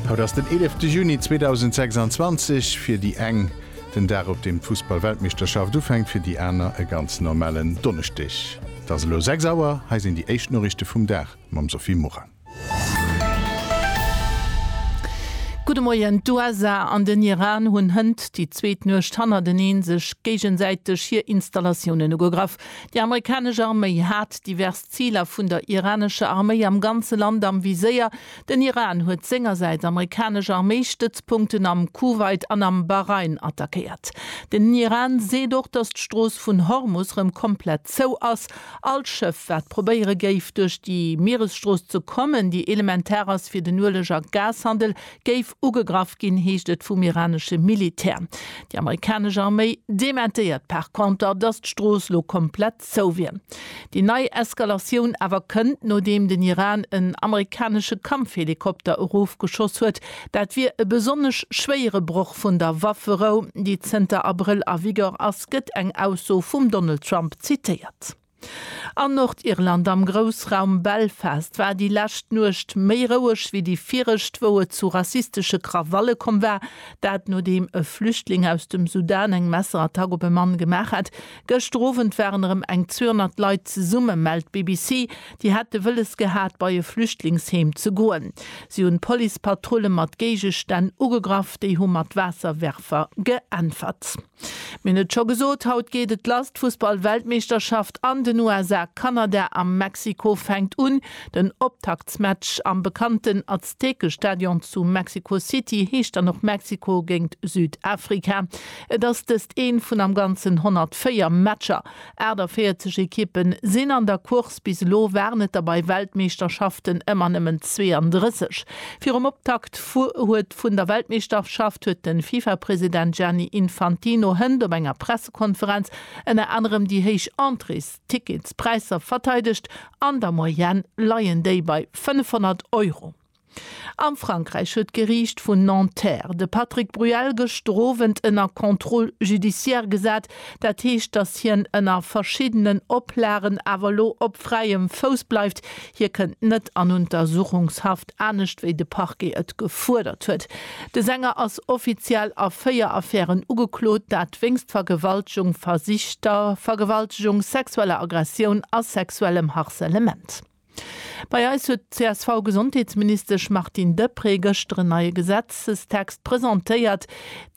Haut ass den eelefte Juni 2026, fir déi eng den Dag op deem d'Fussballweltmeeschterschaft ufänkt, fir déi aner e ganz normalen Donneschdeg. Et ass elo 6 Auer, hei sinn déi éischt Noriichte vum Dag mam Sophie Morang. Gudde Moien, D'USA an den Iran hunn hënt déi zweet Nuecht hannerteneen sech géigesäiteg hir Installatiounen ugegraff. Déi amerikanesch Arméi hat divers Ziler vun der iranescher Arméi am ganze Land am Viséier. Den Iran huet sengersäits amerikanesch Arméistëtzpunkten am Kuwait an am Bahrain attackéiert. Den Iran seet och, datt d'Strooss vun Hormus rëm komplett zou ass. All Schëff, wat probéiere géif, duerch déi Mieresstrooss ze kommen, déi elementar ass fir den Ueleg a Gashandel, géif ugegraff ginn, heescht et vum iranesche Militär. Déi amerikanesch Arméi dementéiert par Konter, datt d'Strooss elo komplett zou wier. Déi nei Eskalatioun awer kënnt, nodeem den Iran en amerikanesche Kampfhelikopter erofgeschoss huet. Dat wier e besonnesch schwéiere Broch vun der Wafferou, déi zënter Abrëll a Vigeur ass, gëtt eng Ausso vum Donald Trump zitéiert. An Nordirland, am Groussraum Belfast, war déi lescht Nuecht méi roueg wéi déi viregt, wou et zu rassistesche Krawalle komm war. Dat nodeem e Flüchtling aus dem Sudan eng Messerattack op e Mann gemaach hat. Gëschter Owend waren erëm eng 200 Leit zesumme, mellt d'BBC. Déi hätte wëlles gehat, bei e Flüchtlingsheem ze goen. Si hunn d'Policepatrulle mat Géigestänn ugegraff. Déi hu mat Waasserwerfer geäntwert. Mir hunn et scho gesot, haut geet et lass, d'Fussballweltmeeschterschaft an den USA, Kanada a Mexiko fänkt un. Den Optaktsmatch am bekannten Aztekestadion zu Mexico City heescht dann och Mexiko géingt Südafrika. Et ass dëst een vun am ganzen 104 Matcher. 48 Ekippen sinn an der Course, bis elo waren et der bei Weltmeeschterschaften ëmmer nëmmen 32. Virum Optakt huet. vun der Weltmeeschterschaft huet de Fifa-President Gianni Infantino hënt op enger Pressekonferenz ënner anerem déi héich Entréesticketspräisser verteidegt, an der Moyenne leien déi bei 500 Euro. A Frankräich huet d'Geriicht vun Nanterre de Patrick Bruel gëschter Owend ënner Contrôle judiciaire gesat, dat heescht, datt hien ënner verschiddenen Oplagen awer elo op fräiem Fouss bleift, hie kënnt net an Untersuchungshaft. anescht wéi de Parquet et gefuerdert huet. De Sänger ass offiziell a véier Affären ugeklot, dat wéinst Vergewaltegung, versichter Vergewaltegung, sexueller Aggressioun a sexuellem Harcèlement. Bei eis huet d'CSV-Gesondheetsministesch Martine Deprez gëschter en neie Gesetzestext presentéiert,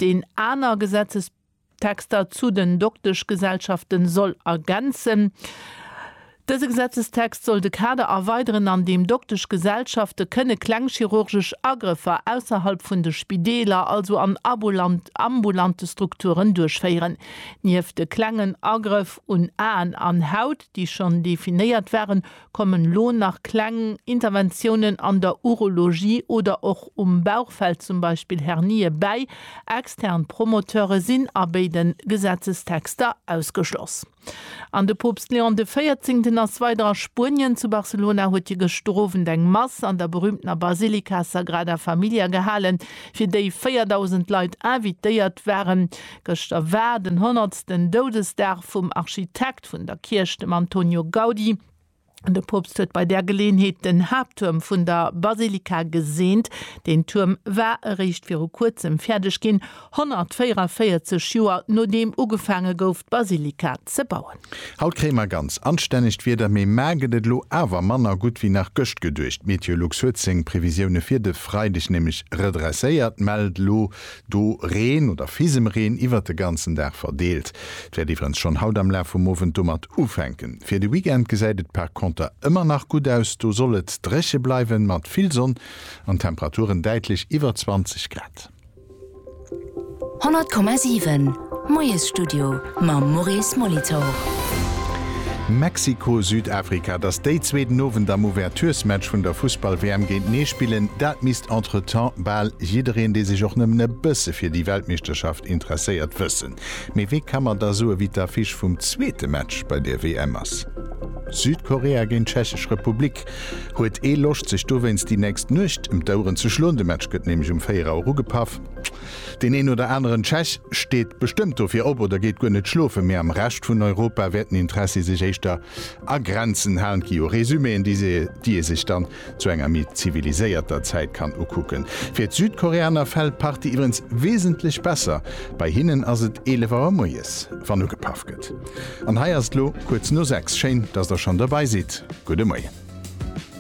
deen aner Gesetzes. Texter zu den Dokteschgesellschaften soll ergänzen. Dëse Gesetzestext soll de Kader erweideren, an deem Dokteschgesellschafte kënne kleng chirurgesch Agrëffer ausserhalb vun de Spideeler, also an ambulante Strukturen, duerchféieren. Nieft de klengen Agrëff un Aen an Haut, déi schonn definéiert waren, Kommen lo nach kleng Interventiounen an der Urologie oder och um Bauchfeld, zum Beispill Hernië bäi. Extern Promoteure sinn a béide Gesetzestexter ausgeschloss. An de Poopst Leon de Véierzéngten ass weider a Spuenien. Zu Barcelona huet hie gëschter Owend eng Mass an der berüümtener Basilika Sagrada Familia gehalen, fir déi 4.000 Leit invitéiert waren. Gëschter war den honnertsten Doudesdag vum Architekt. Architekt vun der Kierch, dem Antonio Gaudi. De Poopst huet bei där Geleeënheet den Haapttuerm vun der Basilika geseent. Deen Tuerm war eréischt viru kuerzem fäerdeg ginn, 144 Joer nodeem ugefaange gouf, d'Basilika ze bauen. Haut kréie mer ganz anstännegt Wieder, mee mar gëtt et elo awer manner gutt wéi nach gëscht geduecht. D'Meteolux huet seng Previsioune fir de Freideg nämlech redresséiert, mellt elo Do Reen oder Fisemreen iwwert de ganzen Dag verdeelt. Et wäert iwwerens schonn haut am Laf vum Owend domat ufänken. Fir de Weekend gesäit et par Konter ëmmer nach gutt aus. Do soll et dréche bleiwen, mat vill Sonn an Temperaturen däitlech iwwer 20 Grad. 100,7. D'Moiesstudio mam Maurice Molitor. Mexiko-Südafrika, dass déi zwee den Owend am Ouverturesmatch vun der Fussball-WM géintenee spillen, dat misst entretemps bal jiddereen, dee sech och nëmmen e bësse fir déi Weltmeeschterschaft interesséiert, wëssen. Mee wee ka mer da soe wéi d'Affiche vum zweete Match bei der WM ass? Südkorea géint d'Tschechesch Republik. Huet ee Loscht sech dowéinst déi nächst Nuecht em d'Oueren ze schloen? De Match gëtt nämlech um 4 Auer ugepaff. Deen een oder aneren Tschech steet bestëmmt dofir op oder geet guer net schlofen, mee am Rescht vun Europa wäert den Interessi sech éischter a Grenzen halen. Et gi jo Resumeen, déi ee sech dann zu enger méi ziviliséierter Zäit kann ukucken. Fir d'Südkoreaner fält d'Party iwwerens wesentlech besser, bei hinnen ass et 11 Auer moies, wann ugepaff gëtt. An hei ass et elo kuerz no 6. Schéin, dass der schonn dobei sidd. Gudde Moien.